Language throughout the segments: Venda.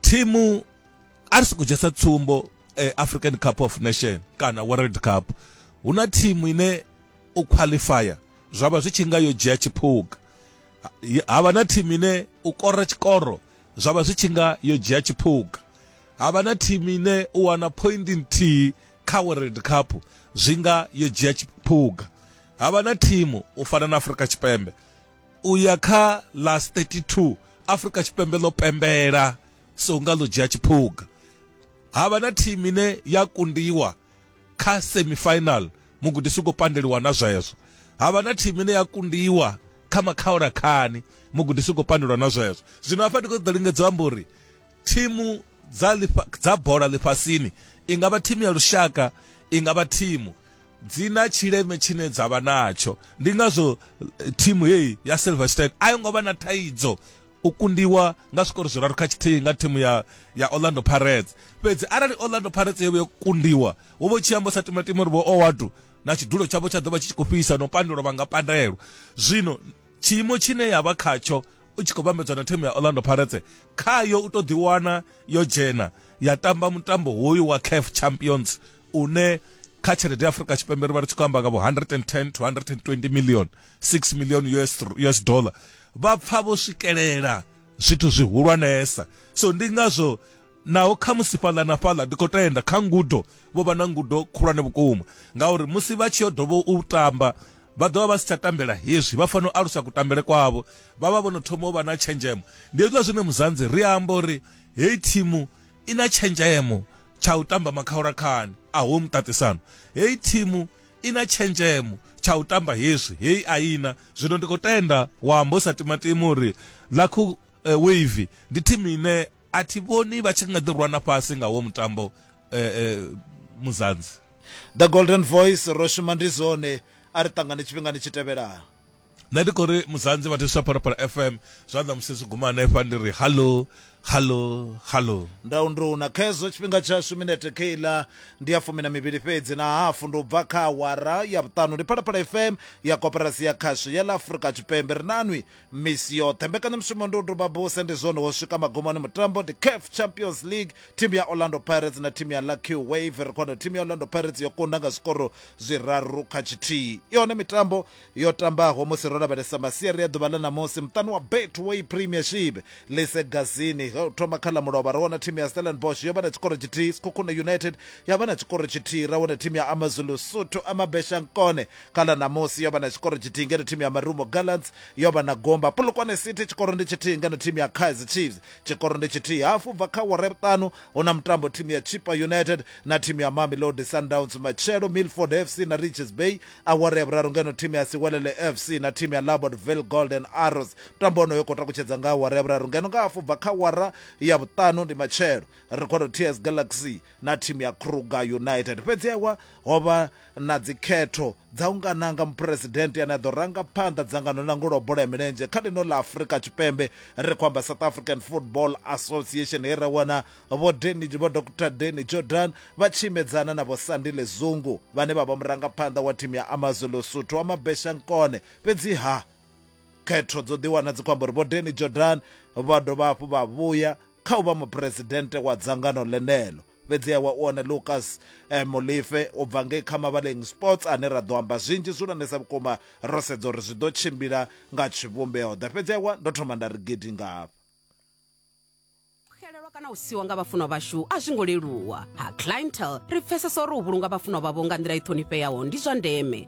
thimu a ri soko dzhiesa tsumbo eh, african cup of nation kana world cup hu na thimu ine u qualifya zwa vha zwi tshi nga yo dzhia tshiphuga ha vha na thimu ine u kora tshikoro zwa vha zwi tshi nga yo dzhia tshiphuga ha vha na thimu ine u wana point nthihi kha world cup zwi nga yo dzhia tshiphuga ha vha na thimu u fana na afrika tshipembe u ya kha last 32 afrika tshipembe ḽo pembela so nga ḽo dzhia tshiphuga ha vha na thimu ine ya kundiwa kha semifinal mugudisi u khou pandeliwa na zwezwo ha vha na thimu ine ya kundiwa kha makhaolakhani mugudisi u khou pandelwa na zwezwo zwino hafha ndi khou ṱoḓa lingedza u amba uri thimu dza lifha, dza bola ḽifhasini i nga vha thimu ya lushaka i nga vha thimu dzi na tshileme tshine dza vha natsho ndi ngazwo eh, thimu heyi ya silverstein a yo ngo vha na thaidzo u kundiwa nga zwikoro zwiraru kha tshithihi nga thimu ya, ya orlando pirates fhedzi arali orlando pirates yo vha yo kundiwa wo vho tshi amba sa timatima uri vho owadu na tshidulo tshavho tsha ḓo vha tshi tshi khou fhisa no pandelwa vha nga pandelwa zwino tshiimo tshine ya vha khatsho u tshi khou vhambedzwa na thimu ya orlando pirates khayo u to ḓiwana yo dzhena ya tamba mutambo hoyu wa caf champions une kha tshelede ya afrika tshipembe ri vha ri tshi khou amba nga vho 110 to 120 million 6 million US, us dollar vha pfa vho swikelela zwithu zwihulwanesa so ndi ngazwo Naho khamusi fhaḽa na fhaḽa ndi khou tenda kha ngudo, vho vha na ngudo khulwane vhukuma, ngauri musi vha tshi yo dovha u tamba, vha ḓo vha vha si tsha tambela hezwi, vha fanela u alusa kutambele kwavho, vha vha vho no thoma u vha na tshenzhemo. Ndi hezwiḽa zwine Muzanzi ri amba uri heyi thimu i na tshenzhemo tsha u tamba makhaulakhani. Aho muṱaṱisano! Heyi thimu i na tshenzhemo tsha u tamba hezwi, heyi a i na. Zwino ndi khou tenda wa amba u sa timatima uri Lucknow Wave ndi thimu ine. a thi vhoni vha tshi nga ḓi rwana fhasi nga wo mutambo eh, eh, muzanzi the golden voice ro shuma ndi zwone a ri ṱangane tshifhingani tshi tevhelaho nṋe ndi khou ri muzanzi vha thuswa phalaphala fm zwanḓa musi zwi guma hanefha ndi ri hallo hallo hallo ndau nduna khezwo tshifhinga tshashu minete keiḽa ndi ya fumi na mivhili fhedzi na hafu ndi u bva kha awara ya vhuṱanu ndi phalaphala fm ya koporasi ya khasho ya ḽa afrika tshipembe ri nanwi misi yoṱhe mbekanyamushumo ndi u duba buse ndi zwone wo swika magumoni mutambo ndi caf champions league thimu ya orlando pirates na thimu ya lucky wave ri khona thimu ya orlando pirates yo kunda nga zwikoro zwiraru kha tshithihi yone mitambo yo tambaho musi ro lavhelesa masiari ya ḓuvha ḽa ṋamusi muṱani wa betway premiership lise gazini ho thoma kha ḽa mulovha ra wana thimu ya stellenbosh yo vha na tshikoro tshithihi sikhukhuna united ya vha na tshikoro tshithihi ra wana thimu ya amazulu suthu amabeshankone kha ḽa ṋamusi yo vha na tshikoro tshithihi ngeno thimu ya marumo gallants yo vha na gomba polokwane city tshikoro ndi tshithihi ngeno thimu ya kaizer chiefs tshikoro ndi tshithihi hafu bva kha wara vhuṱanu hu na mutambo thimu ya chipa united na thimu ya mamelodi sundowns matshelo milford fc na riches bay awara ya vhuraru ngeno thimu ya siwelele fc na thimu ya labordville golden arrows mutambo wonoyo khou takutshedza nga awara ya vhuraru ngeno nga hafu bva kha wara ya vhuṱanu ndi matshelo ri khou ri ts galaxy na thimu ya kruger united fhedzi ewa ho vha na dzikhetho dza u nga nanga muphuresidennde ane a ḓo ranga phanḓa dzangano ḽa ndangulo bola ya milenzhe kha ḽino ḽa afurika tshipembe ri khou amba south african football association he ra wana vho deni vho dr deni jordan vha tshi imedzana na vho sandile zungu vhane vha vha murangaphanḓa wa thimu ya amazulu suthu wa mabesha nkone fhedzi ha khetho dzo ḓiwana dzi khou amba uri vho deni jordan vha dovha hafhu vha vhuya kha u vha muphuresidennde wa dzangano ḽeneḽo fhedziha wa u wana lucas eh, molife u bva ngei kha mavhaleng sports ane ra ḓo amba zwinzhi zwihulwanesa vhukuma ro sedza uri zwi ḓo tshimbila nga tshivhumbeo ḓa fhedziha wa ndo thoma nda ri gidi ngafha xelelwa kana u siwa nga vhafunwa vhashu a zwi ngo leluwa ha clientele ri pfesesa uri u vhulunga vhafunwa vhavho nga nḓila i ṱhonifheaho ndi zwa ndeme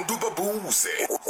udubabuze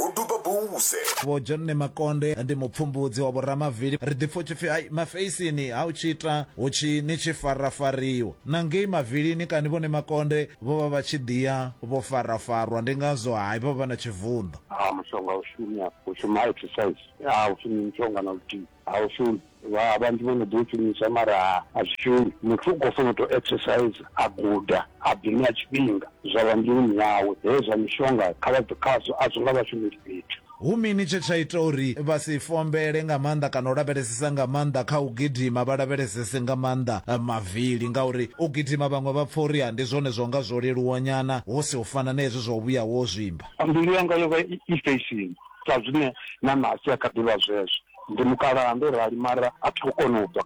udubabuze vho john ne makonde ndi mupfumbudzi wa vhoramavili ri ḓipfa u tshi pfi ai mafeisini ha u tshi ita hu tshi ni tshi farafariwa na ngei mavilini kani vhone makonde vho vha vha tshi ḓiya vho farafarwa ndi ngazwo hai vha vha na tshivunḓo ha mushonga u shumi afho u shuma exercise ha u shumi mushonga na luthihi ha u shumi Vha vhanzhi vho no ḓi u shumisa mara a zwi shumi. Muthu u khou fanela u tou exerciser, a guda, a ḓi ṋea tshifhinga, zwa vha mbiluni yawe. Hezwi zwa mishonga kha vha bve khazwo, a zwo nga vha shumeli fhethu. Hu mini tshe tsha ita uri vha si fombele nga maanḓa kana u lavhelesesa nga maanḓa kha u gidima, vha lavhelesese nga maanḓa mavili? Ngauri u gidima vhaṅwe vha pfa uri ndi zwone zwa nga zwo leluwanyana hu si u fana na hezwi zwa u vhuya wo zwimba. Mbilu yanga yo vha i fesheni, sa zwine na Nasi a kha ḓi vha zwezwo. ndi mukalaha ndo rali mara a thi khou kona u bva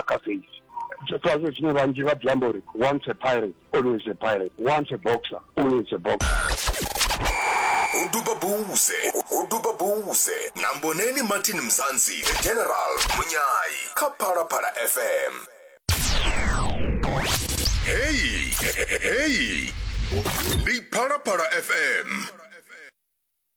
kha feisi zwifhazwe zwine vhanzhi vha ḓiamba uri once a pirate always a pirate once a boxer always a boxer u duba buse u duba buse na mboneni martin mzansi the general munyayi kha phalaphala fm heyi heyi ndi phalaphala fm